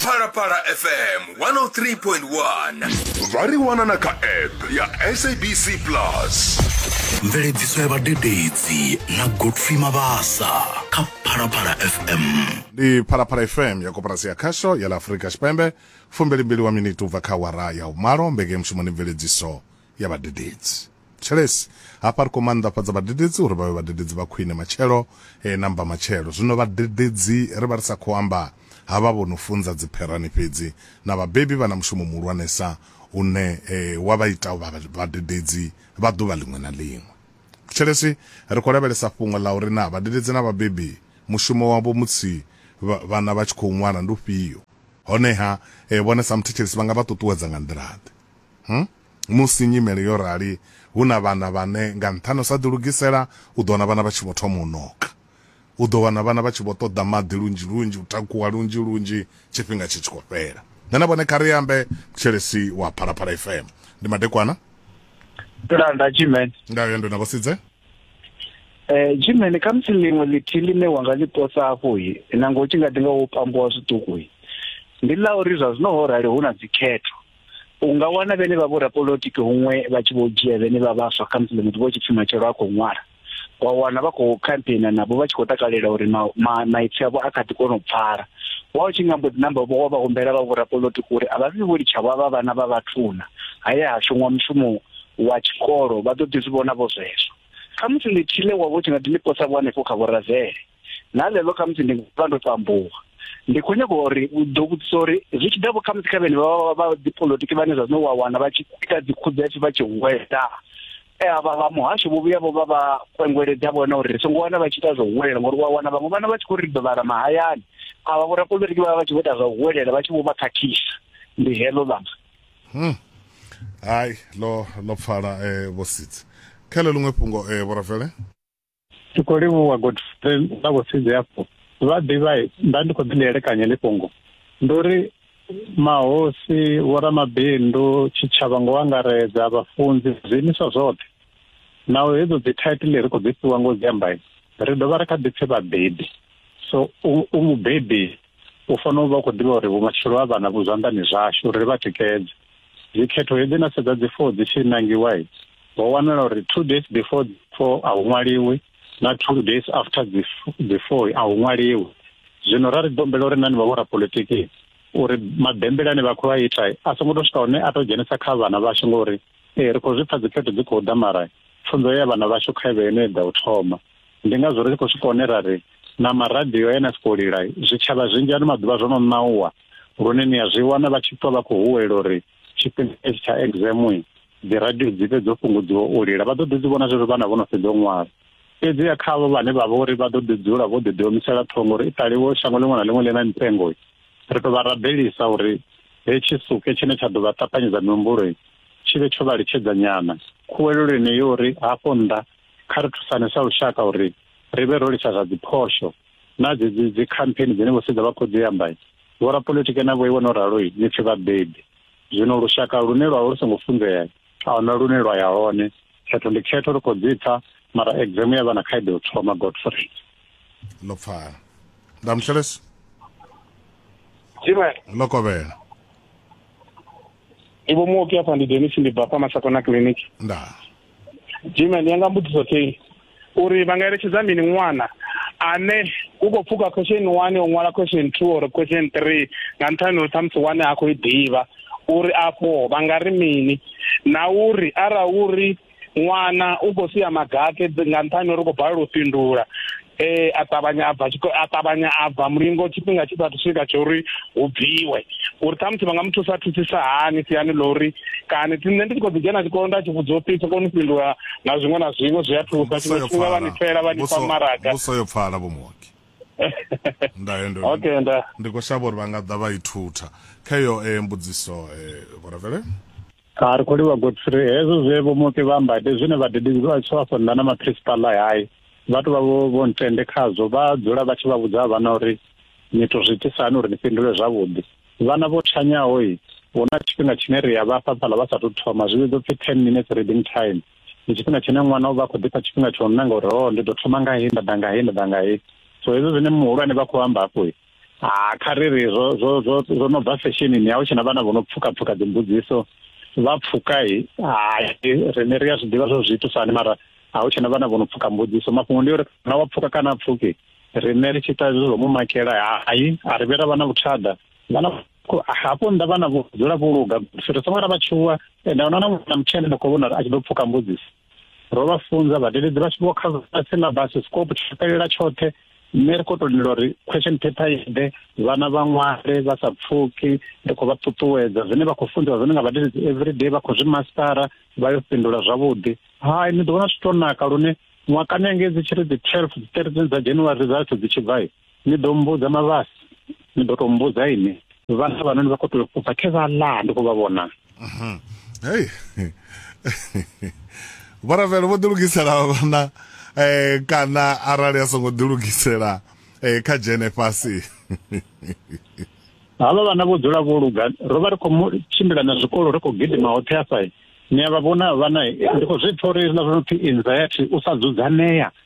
phalaphala fm 103.1 vha ri wana na kha app ya sabc plus mveledziso ya vhadededzi na godfrey mabasa kha phalaphala fm ndi phalaphala fm ya koporasi ya khasho ya la afurika tshipembe fumbelimbili wa miniti ubva kha wara ya umalo mbekeye mushumoni mveledziso ya vhadededzi. Thetshelesi, hafha ri khou maanḓafhadza vhadededzi uri vha vhe vhadededzi vha khwine matshelo eh, na mbamatshelo. Zwino vhadededzi ri vha ri sa khou amba ha vha vho no funza dzipherani fhedzi. Na vhabebi vha na mushumo muhulwanesa une eh, wa vha ita u vha vhadededzi vha ḓuvha ḽiṅwe na ḽiṅwe. Thetshelesi, ri khou lavhelesa fhungo ḽa uri naa vhadededzi na vhabebi mushumo wavho musi vha- vhana vha tshi khou ṅwala ndi ufhio. Honeha, eh, vhone sa muthetshelesi vha nga vha ṱuṱuwedza nga nḓila-ḓe? Hm, musi nyimele yo rali, hu na vhana vhane nga nṱhani u sa ḓilugisela, u ḓo wana vhana vha tshi vho thoma u noka. U ḓo wana vhana vha tshi vho ṱoḓa maḓi lunzhi-lunzhi, u takuwa lunzhi-lunzhi, tshifhinga tshi tshi khou fhela. Nṋe na vhone kha ri ambe, Mthetshelesi wa Phalaphala FM. Ndi madekwana. Ndo lala nda G-Man. Nga yendo na Vhosidze. Eh, G-Man, kha musi ḽiṅwe ḽithihi ḽine wa nga ḽi posa afho, na ngo tshi nga ḓi nga wo pambuwa zwiṱuku, ndi ḽa uri zwa zwino ho rali hu na dzikhetho. u nga wana vhene vha vho rapolotiki huṅwe vha tshi vho dzhia vhene vha vhaswa kha musi muthu vho tshi pfhi matshelo a khou ṅwala wa wana vha khou campaigna navho vha tshi khou takalela uri maipfi avho a kha ḓi kona u pfala wa u tshi nga mbo ḓi namba vho wa vha humbela vha vhorapolotiki uri a vha vhi vho litshavho avha vhana vha vhathuna haya ha shongwa mushumo wa tshikolo vha ḓo ḓi zwi vhona vho zwezwo khamusi ḽithihi ḽe wa vho tshi nga ḓi ḽi posa vho hanefho kha vhorazele na ḽeḽo khamusi ndi nga vha ndo tambuwa ndi khou nyaka uri u ḓo vhudzisa uri zwi tshi ḓa vho khamusi kha vhene vha vha dipolotiki vhane zwa zwino wa wana vha tshi ita dzikhudzefi vha tshi huwela e avha vha muhasho vho vhuya vho vha vha kwengweledza vhona uri ri songo wana vha tshi ita zwa huwelela ngori wa wana vhaṅwe vhana vha tshi khou ri dovhara mahayani avha vho rapolitiki vha vha vha tshi vho ita zwa huwelela vha tshi vho vha khakhisa ndi heḽo ḽanga hmm. hai lo lo pfala eh, vhositsi kha ḽo luṅwe fhungo eh, vhorafele ndi khou livhuwa godfrey na vhosizwe afho vha ḓivha nda ndi khou ḓi lielekanya ḽi fhungo ndi uri mahosi vhoramabindu tshitshavha ngo angaredza vhafunzi zwiimiswa zwoṱhe naho hedzo dzi title ri khou dzi fhiwa ngo dzi amba ri dovha ri kha ḓi pfhi vhabebi so u mubebi u fanela u vha u khou ḓivha uri vhumatshelo ha vhana vhu zwanḓani zwashu uri ri vha tikedze dzikhetho hedzi na sedza dzi four dzi tshi nangiwa ho wanala uri two days before four a hu ṅwaliwi na two days after dzi four a hu ṅwaliwi zwino ra ri dombela uri nani vha vho rapolitiki uri mabembele ane vha khou a ita a songo to swika hone a to dzhenisa kha vhana vhashu ngori ee ri khou zwi pfa dzikhetho dzi khou ḓa mara pfunzo ya vhana vhashu kha vhe ine ḓa u thoma ndi ngazwo ri tshi khou swika hone ra ri na maradio ene a si khou lila zwitshavha zwinzhi ano maḓuvha zwo no ṋauwa lune ni a zwi wana vha tshi ṱwa vha khou huwela uri tshifhinga hetshi tsha examwe dzi radio dzi fhe dzo fhungudziwa u lila vha ḓo ḓi dzi vhona zwezwo vhana vho no fhedza u ṅwala fhedzi ya kha avho vhane vha vha uri vha ḓo ḓi dzula vho ḓi ḓiomisela ṱhongo uri i ṱaliwo shango ḽiṅwe na ḽiṅwe ḽi na mitengo ri tou vha rabelisa uri hetshi suke tshine tsha ḓo vha ṱapanyedza mihumbuloi tshi vhe tsho vha litshedza nyana khuwelelo ine yo uri hafho nnḓa kha ri thusane sa lushaka uri ri vhe ro lisa zwa dziphosho na dzedzi dzi campaign dzine vho sedza vha khou dzi amba vho rapolitiki na vho iwe no ralo ni pfi vhabebi zwino lushaka lune lwa lu songo funzea a huna lune lwa ya hone khetho ndi khetho ri khou dzi pfa mara exam ya vha na khaedu u thoma godfrey ḽo pfala ndamhlelesi ḽo kovhela ivo muoki apa ndi denis ndibva pamasakona clinic nda jiman yanga mbudziso tei uri vanga eletshedza mini ṅwana ane u khou pfuka question one o ṅwala question two or question three nga nṱhani uri ṱhamusi one a khou i ḓivha uri afho vha nga ri mini na uri ara uri ṅwana u khou sia magake nga nṱhani uri u khou balelwa u fhindula eh a ṱavhanya a bva a ṱavhanya a bva mulingo tshifhinga tshi sathu swika tsho uri hu bviwe uri ṱhamusi vha nga muthu sa thusisa hani siani ḽa uri kana ti nṋe ndi tshi khou ḓi dzhena tshikolo nda tshi vhudza upfi tshi kone u fhindula na zwiṅwe na zwiṅwe zwi a thusa tshiṅwe tshifhinga vha ni fela vha ni fa maraga vhuso yo pfala vho muoki okay nda ndi khou shavha uri vha nga ḓa vha ithutha kha iyo eh, mbudziso eh, vhorevele a ri khou livha godfrey hezwo zwe vho muke vha amba ndi zwine vhadededzi vha tshi vha fondana maprincipal a hayi vha tou vha vho vho ntende khazwo vha dzula vha tshi vha vhudza vhana uri ni to zwi itisani uri ni fhindule zwavhuḓi vhana vho tshanyaho i hu na tshifhinga tshine ri a vha fha fhala vha sa tou thoma zwi vhidzwa pfi ten minutes reading time ndi tshifhinga tshine ṅwana u vha khou ḓifha tshifhinga tsho nanga uri ho oh, ndi ḓo thoma nga hei nda ḓa nga hei nda ḓa nga hei so hezwo zwine muhulwane vha khou amba hafho i ha ah, kha ri ri zwo zwo zwo zwo no bva fesheni ya hu tshena vhana vho no pfuka pfuka dzimbudziso vha pfuka i hai rine ri a zwi ḓivha zwo zwi itiswa hani mara a hu tshena vhana vho no pfuka mbudziso mafhungo ndi uri na wa pfuka kana pfuki rine ri tshi ita zwo zwo mu makela hai a ri vhera vhana vhuthada vhana hafho nda vhana vho dzula vho luga ri songo ra vha tshuwa ende ona na mutshene na khou vhona a tshi ḓo pfuka mbudziso ro vha funza vhadededzi vha tshi vho kha syllabus scope tshi fhelela tshoṱhe nṋe ri khou tou lindela uri question paper i ḓe vhana vha ṅwale vha sa pfuki ri khou vha ṱuṱuwedza zwine vha khou funziwa zwone nga vhadededzi everyday vha khou zwi mastara vha yo fhindula zwavhuḓi hai ni ḓo vhona zwi tou naka lune ṅwakani engedzi tshi ri dzi twelve dzi thirteen dza january results dzi tshi bva ni ḓo mbudza mavhasi ni ḓo to mbudza ini vhana vhana ni vha khou tea u bva khe vha ḽa ndi khou vha vhona mhm. hei vharavhelo vho ḓilugisela vhana um kana arali a songo ḓilugisela um kha dzhene fhasi havha vhana vho dzula vho luga ro vha ri khou tshimbila na zwikolo ri khou gidima hoṱhe afha ni a vha vhona vhana ndi khou zwi pfa uri hezwiḽa zwo no pfhi anxiety u sa dzudzanea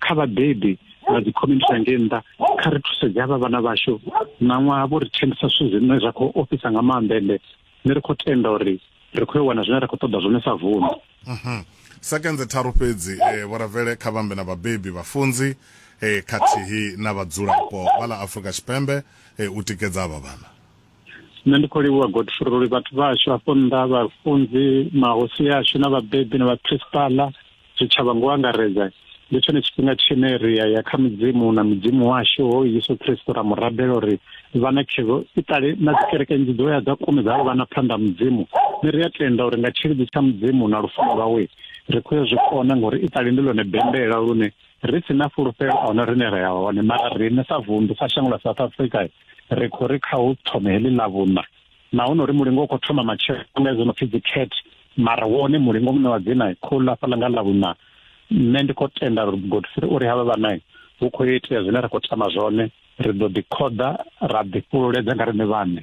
kha vhabebi na dzi community ya ngei nnḓa kha ri thusedze havha vhana vhashu ṋaṅwaha vho ri thembisa zwithu zwine zwa khou ofhisa nga maanḓa ende ne ri khou tenda uri ri khou yo wana zwine ra khou ṱoḓa zwone sa vundu mhm. sekenze tharu fhedzi eh, vhoravele kha vhambe na vhabebi vhafunzi eh, khathihi na vhadzulapo vha ḽa afrika tshipembe eh, u tikedza avha vhana nṋe ndi khou livhuwa godfrey vhathu vhashu afho nnḓa vhafunzi mahosi ashu na vhabebi na vhaprinsipala zwitshavha ngo angaredza ndi tshone tshifhinga tshine ri ya ya kha mudzimu na mudzimu washu ho yesu kristo ra mu rabela uri vha na khevo i ṱale na dzikereke nnzhi dzo ya dza kumedza vha na phanḓa mudzimu ni ri a tenda uri nga tshilidzi tsha mudzimu na lufuno lwawe ri khou ya zwi kona ngori i ṱale ndi lone bembela lune ri si na fulufhelo a huna rine ra ya hone mara riṋe sa vunḓu sa shango ḽa south africa ri khou ri kha hu thome heḽi ḽa vhuṋa na honori mulingo u khou thoma matshelo nga izwo no pfi dzi cat mara wone mulingo muṋe wa dzina khou ḽa fhaḽa nga ḽa vhuṋa nṋe ndi khou tenda uri godfrey uri havha vhana hu khou yo itea zwine ra khou tama zwone ri ḓo ḓi khoḓa ra ḓi fhululedza nga riṋe vhaṋe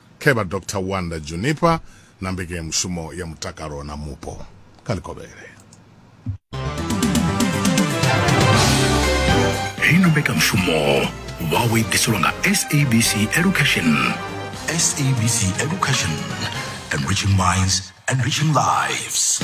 Khe vha Doctor Wanda Junipa na mbekanyamushumo ya mutakalo na mupo kha ḽikovhele. Heyi na mbekanyamushumo vhawe i ḓiselwa nga SABC Education. SABC Education, enriching minds, enriching lives.